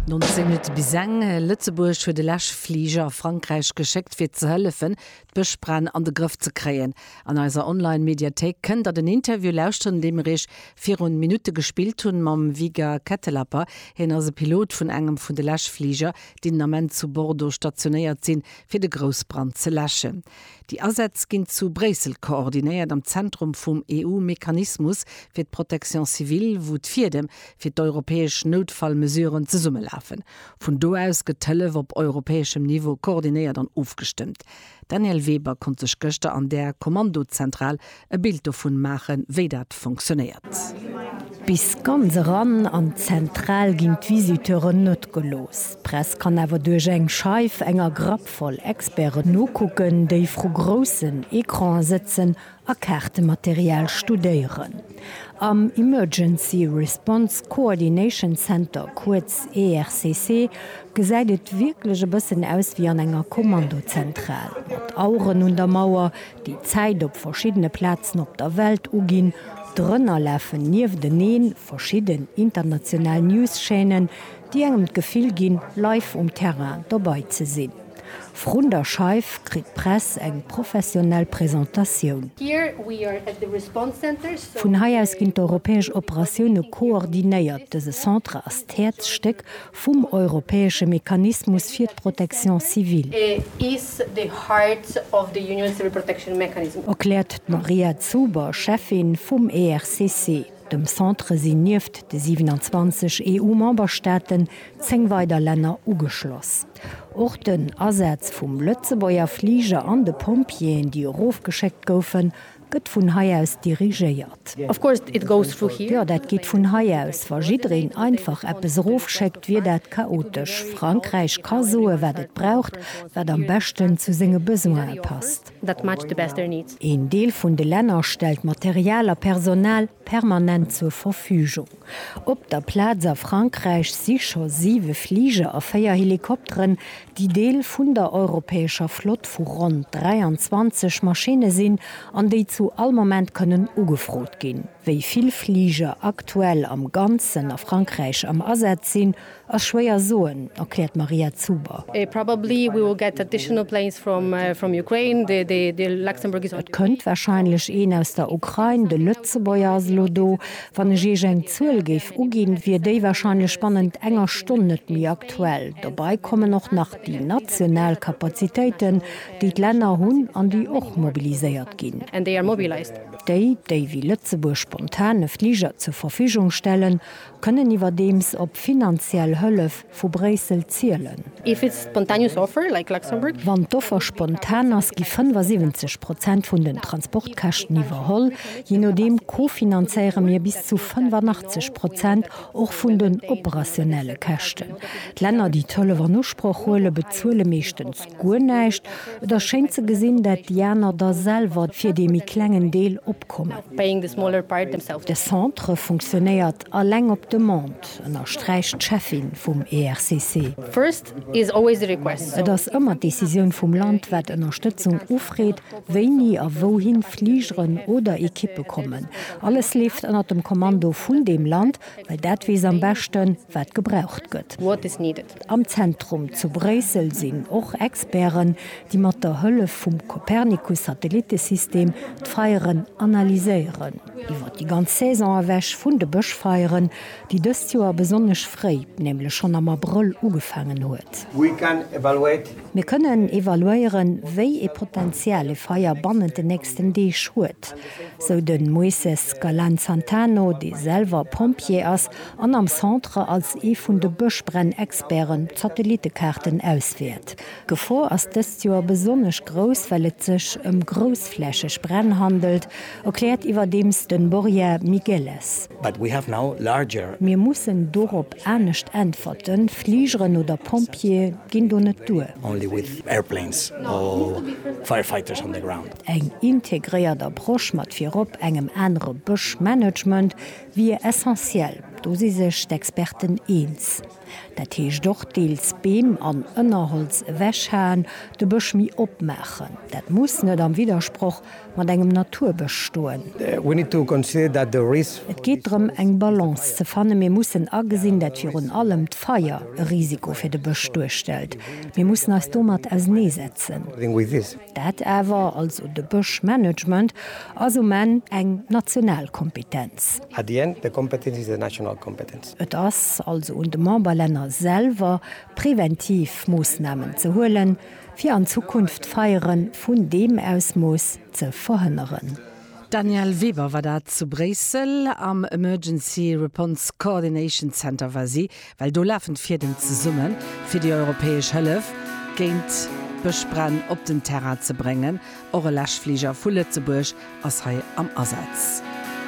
19 Minutt bis eng. Lëtzebuerg huet e Läschfliger a Frankräich geschéckt, fir ze hëllefen, d'Bëschbränn an de Grëff ze kréien. An eiser Online-Mediathéik kënnt der den Interview lauschteren, dee mir iech virun Minutte gespillt hunn mam Viga Kettelapper. Hien ass e Pilot vun engem vun de Läschfliger, déi den Ament zu Bordeaux stationéiert sinn, fir de Groussbrand ze läschen. Déi Asätz ginn zu Bréissel koordinéiert am Zentrum vum EU-Mechanismus fir d'Protection civile, wou d'Fiedem fir d'europäesch Noutfallmesuren zesummelafen. Vun do aus gëtt d'Hëllef op europäeschem Niveau koordinéiert an ofgestëmmt. D'Danièle Weber konnt sech gëschter an där Kommandozentral e Bild dovun maachen, wéi dat funktionéiert. Bis ganz eran an d'Zentral ginn d'Visiteuren net gelooss. D'Press kann awer duerch eng Scheif enger Grapp voll Experten nokucken, déi vru groussen Ecrane sëtzen a Kaartematerial studéieren. Am Emergency Response Coordination Center, kuerz ERCC, gesäit et wierklech e bëssen aus wéi an enger Kommandozentral, mat Aueren un der Mauer, déi Zäit op verschiddene Plazen op der Welt uginn, drënner lafen niefteneen verschidden international News-Chaînen, déi engem d'Gefill ginn, live um Terrain dobei ze sinn. Vrun der Scheif kritt d'Press eng professionell Presentatioun. Vun hei aus ginn d'europäesch Operatioune koordinéiert. Dëse Centre ass d'Häerzstéck vum europäesche Mechanismus fir d'Protection civile. Erkläert d'Maria Zuber, Schäffin vum ERCC. Dem Centre sinn nieft de 27 EU-Memberstaaten 10 weider Länner ugeschloss. Och den Asaz vum Lëtzebuerger Fliger an de Pompjeeën, déi erofgeschéckt goufen, Gëtt vun hei aus dirigéiert. Of course it goes through here. Jo, dat geet vun hei aus. Wa jiddereen einfach eppes erofschéckt, wier dat chaotesch. Frankräich ka soe wat et braucht, wat am beschten zu senge Besoine passt. That match the best their needs. Een Deel vun de Länner stellt Material a Personal permanent zur Verfügung. Op der Plaz a Frankräich si scho siwe Fliger a véier Helikopteren, déi Deel vun der europäescher Flott vu ronn 23 Maschinne sinn an déi zu all Moment kënnen ugefrot ginn. Wéi vill Fliger aktuell am Ganzen a Frankräich am Asaz sinn, ass schwéier soen, erkläert d'Maria Zuber. Et kënnt warscheinlech een aus der Ukrain, de Lëtzebuerger ass elo do. Wann ech iech eng Zuel géif uginn, wier déi wahrscheinlech bannent enger Stonn net méi aktuell. Dobei kommen och nach déi national Kapazitéiten, déi d'Länner hunn an déi och mobiliséiert ginn. Déi, déi wéi Lëtzebuerg spontan e Fliger zur Verfügung stellen, kënnen iwwerdeems op finanziell Hëllef, Vu Bréissel zielen. If it's spontaneous offer, like Luxembourg. Wann d'Offer spontan ass, gi 75 Prozent vun den Transportkäschten iwwerholl. Je nodeem kofinanzéiere mir bis zu 85 Prozent och vun den operationelle Käschten. D'Länner, déi d'Hëllef an Usproch huele, bezuele meeschtens guer näischt. Et ass schéin ze gesinn, dat déi aner da selwer fir dee méi klengen Deel opkommen. De Centre funktionéiert alleng op Demande. Wort, ënnersträicht d'Cheffin vum ERCC. Et ass ëmmer d'Decisioun vum Land, wat Ënnerstëtzung ufreet, wéini a wouhin Fligeren oder Ekippe kommen. Alles leeft ënner dem Kommando vun deem Land, well dat weess am beschten, wat gebraucht gëtt. Am Zentrum zu Bréissel sinn och Experten, déi mat der Hëllef vum Copernicus-Satellittesystem d'Feieren analyséieren. Iwwer déi ganz Saison ewech vun de Bëschfeieren, déi dëst Joer besonnesch fréi, nämlech schonn am Abrëll ugefaangen huet. Mir kënnen evaluéieren, wéi ee Potenzial e Feier bannent den nächsten Deeg huet, sou de Moises Galan-Santano, dee selwer Pompjee ass an am Centre als ee vun de Bëschbränn-Experten d'Satellitekaarten auswäert. D'Gefor ass dëst Joer besonnesch grouss, well et sech ëm groussflächeg Bränn handelt, erkläert iwwerdeems de Borja Migueles. Mir mussen dorop anescht äntwerten, Fligeren oder Pompjeeë ginn do net duer. Eng integréiert Approche mat virop engem anere Bëschmanagement, Wier essentiell, do si sech d'Experten eens. Dat heescht och deels Beem an Ënnerholz ewechhaen, de Bësch méi opmaachen. Dat muss net am Widdersproch mat engem Naturbësch stoen. Et geet drëm eng Balance ze fannen. Mir mussen agesinn, dat virun allem d'Feier e Risiko fir de Bësch duerstellt. Mir mussen eis domat auseneesetzen. Dat awer, also de Bëschmanagement, ass um Enn eng national Kompetenz. At the end, the competence is a national competence. Et ass also un de Memberlänner selwer, präventiv Moossnamen ze huelen, fir an Zukunft Feiere vun deem Ausmooss ze verhënneren. D'Danièle Weber war dat zu Bréissel. Am Emergency Reponse Coordination Center war si, well do lafen d'Fiedem zesummen, fir déi europäesch Hëllef géint Bëschbränn op den Terrain ze bréngen. Och e Läschfliger vu Lëtzebuerg ass hei am Asaz.